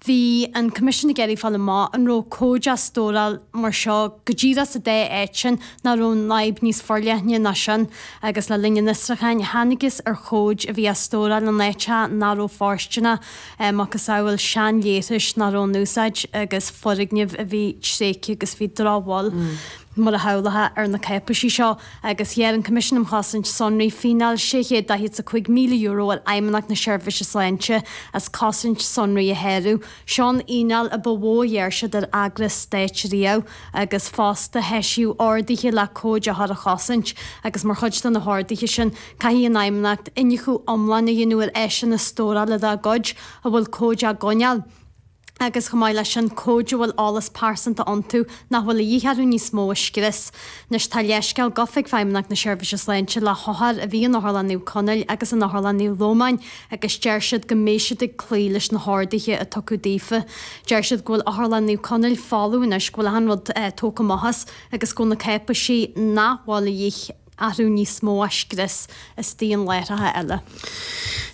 Bhí an Coimisiún ag iarraidh fáil amach an raibh comhaid á stóráil mar seo go díreach sa dá áit sin nó an raibh an fhadhb níos forleithne ná sin agus le linn an fhiosrúcháin thángthas ar chomhaid a bhí á stóráil in áiteacha nach raibh fóirsteanach, macasamhail seanleithris nach raibh in úsáid agus foirgnimh a bhí tréigthe agus bhí drochbhail. mar a shamhlófá, ar na cáipéisí seo, agus ghearr an Coimisiún um Chosaint Sonraí fíneáil €645,000 ar Fheidhmeannacht na Seirbhíse Sláinte as cosaint sonraí a shárú. Seo an fhíneáil a ba mhó a ghearr siad ar eagras stáit riamh, agus fosta heisíodh orduithe le comhaid othar a chosaint, agus mar chuid de na horduithe sin, caithfidh an Fheidhmeannacht iniúchadh iomlán a dhéanamh ar áiseanna stórála dá gcuid a bhfuil comhaid á gcoinneáil. agus chomh maith leis sin, comhaid a bhfuil eolas pearsanta iontu nach bhfuil a dhíth orthu níos mó a scrios. Anois, tá leithscéal gafa ag Feidhmeannacht na Seirbhíse Sláinte le hothair a bhí in Otharlann Naomh Conaill agus in Otharlann Naomh Lomáin agus deir siad go mbeidh siad ag cloí leis na horduithe a tugadh daofa. Deir siad go bhfuil Otharlann Naomh Conaill folamh anois, go bhfuil achan rud tógtha amach as agus go bhfuil na cáipéisí nach bhfuil a dhíth orthu níos mó á scrios fosta in láithreacha eile.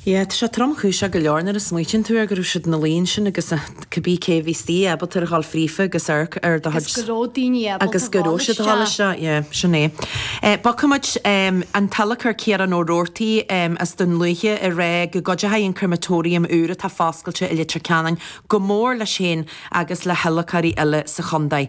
Yeah, tá sé tromchúiseach go leor nuair a smaoitíonn tú ar go raibh siad ina luí ansin agus cibí cé a bhí istigh ábalta ar a dhul fríofa agus amharc ar do chuid Agus go raibh daoine ábalta a dhul isteach. Yeah, sin é. Bogfaidh muid an t-adhlacóir Ciarán Ó Rabhartaigh as Dún Lúiche ag rá go gcuideoidh an Crematorium úr atá foscailte i Leitir Ceanainn go mór leis féin agus le hadhlacóirí eile sa chontae.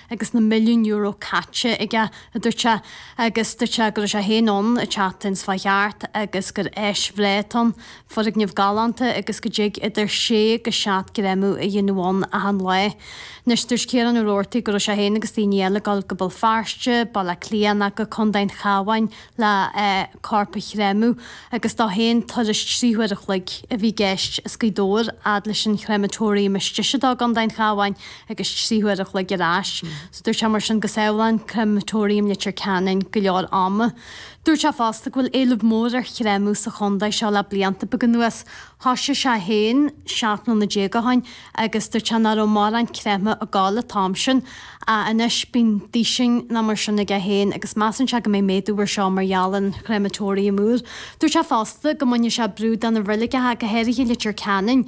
agus na milliún euro caite aige, a dúirt sé, agus dúirt sé go raibh sé féin ann an tseachtain seo a chuaigh thart agus gur áis bhreá atá ann, foirgneamh galánta agus go dtig idir sé agus seacht gcréamadh a dhéanamh ann achan lá. Anois, dúirt Ciarán Ó Rabhartaigh go raibh sé féin agus daoine eile ag dul go Béal Feirste, Baile Átha Cliath ná go Contae an Chabháin le corp a chréamadh agus dó féin turas trí huaire a chloig a bhí i gceist. as Gaoth Dobhair fhad leis an crematorium is deise dó i gContae an Chabháin. agus trí huaire a chloig ar ais. Dúirt sé mar sin go sábhálann crematorium Leitir Ceanainn go leor ama. Dúirt sé fosta go bhfuil éileamh mór ar chréamadh sa chontae seo le blianta beaga anuas. Thosaigh sé féin seacht mbliana déag ó shin agus dúirt sé nach raibh mórán créamtha ag gabháil an t-am sin ach anois bíonn duisín ná mar sin aige féin agus measann sé go mbeidh méadú ar seo mar gheall ar an chréamatóiriam úr. Dúirt sé fosta go mbainfeadh sé brú de na reiligeacha go háirithe i Leitir Ceanainn.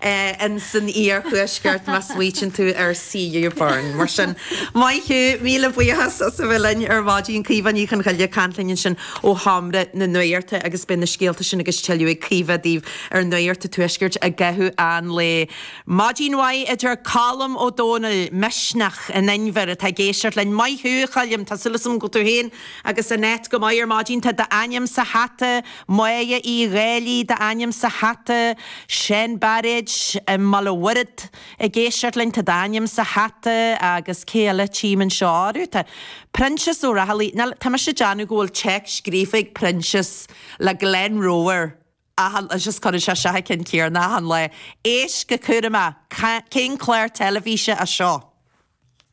in san iarthuaisceart má smaoiteann tú ar CU Burn. Mar sin, maith thú, míle buíochas as a bheith linn ar maidin. Caoimhe Ní Chonchoille ag caint linn ansin ó Sheomra na Nuachta agus beidh na scéalta sin agus tuilleadh ag Caoimhe daoibh ar Nuacht an Tuaiscirt i gcaitheamh an lae. Maidin mhaith a deir Colm Ó Domhnaill, Misneach in Inbhear, atá ag éisteacht linn. Maith thú, a Choilm, tá súil agam go bhfuil tú féin agus Annette go maith ar maidin. Tá d'ainm sa hata! Moya Uí Dhálaigh d'ainm sa hata, Seán Bairéad i mBaile Mhuirthead i gCéisirtlinn tá d'ainm sa hata agus cé eile tchím anseo, ó tá, Proinsias Ó Raghallaigh, ná, tá mise ag déanamh go bhfuil téacs scríofa ag Proinsias le Glen Rower achan lá, just cuireann sé seo thar cionn céanna achan lá, éist go cúramach, cén clár teilifíse é seo?